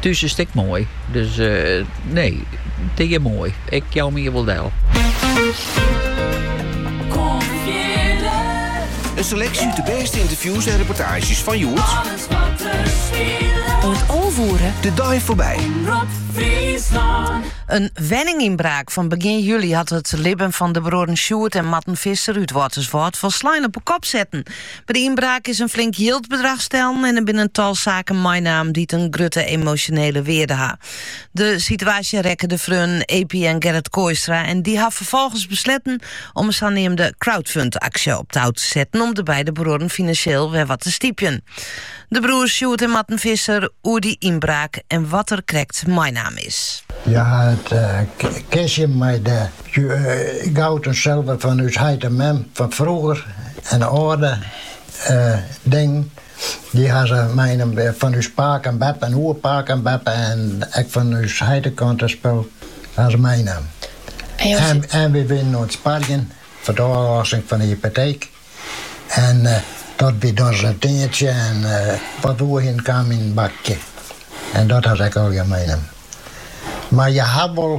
Thús is it ek moai, dus nee, it is hjir moai. Ik jou my hjir wol del. In seleksje út de bêste ynterviews en reportaazjes fan hjoed. Alles wat der De dei foarby. In wenningynbraak fan begjin july hat it libben fan de bruorren Sjoerd en Marten Visser út Wâlterswâld folslein op 'e kop setten. By de ynbraak is in flink jildbedrach stellen en der binne in tal saken meinaam dy't in grutte emosjonele wearde ha. De situaasje rekke de freonen Eppie en Gerrit Kooistra en dy ha ferfolgens besletten om in saneamde crowdfund-aksje op tou te setten om de beide bruorren finansjeel wer wat te stypjen. De broers Sjoerd en Marten Visser oer dy ynbraak en wat der krekt meinaam is. Hja ha it kistje mei de Goud en sulver fan ús heit en mem fan frûger en âlde dingen dy ha se meinommen wer fan ús pake en beppe en oerpake en beppe en ek fan ús heite kant en spul ha se meinommen en wy wienen oan it sparjen foar de ôflossing fan de hypoteek en dat wie dan sa'n tientsje en wat we oerhienen kaam yn in bakje en dat ha se ek allegear meinommen mar je ha wol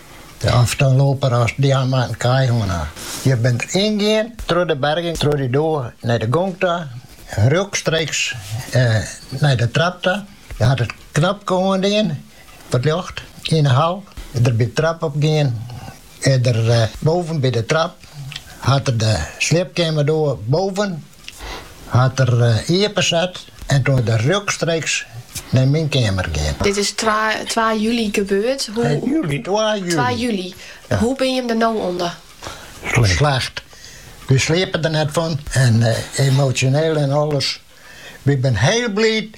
Of in loper as dy moatte in kaai hân ha. Hja binne der yn gien troch de berging troch dy doar nei de gong ta en rjochtstreeks nei de trap ta. Hja hat it knopke oandien foar it ljocht yn 'e hal en der by de trap op gien. En der boven by de trap hat er de sliepkeamerdoar boven. Hat er iepenset en doe is er rjochtstreeks nei myn keamer gean. Dit is twa july gebeurd. Hoe binne jim der no ûnder? Slecht. Wy sliepe der net fan en emosjoneel en alles. Wy binne hiel bliid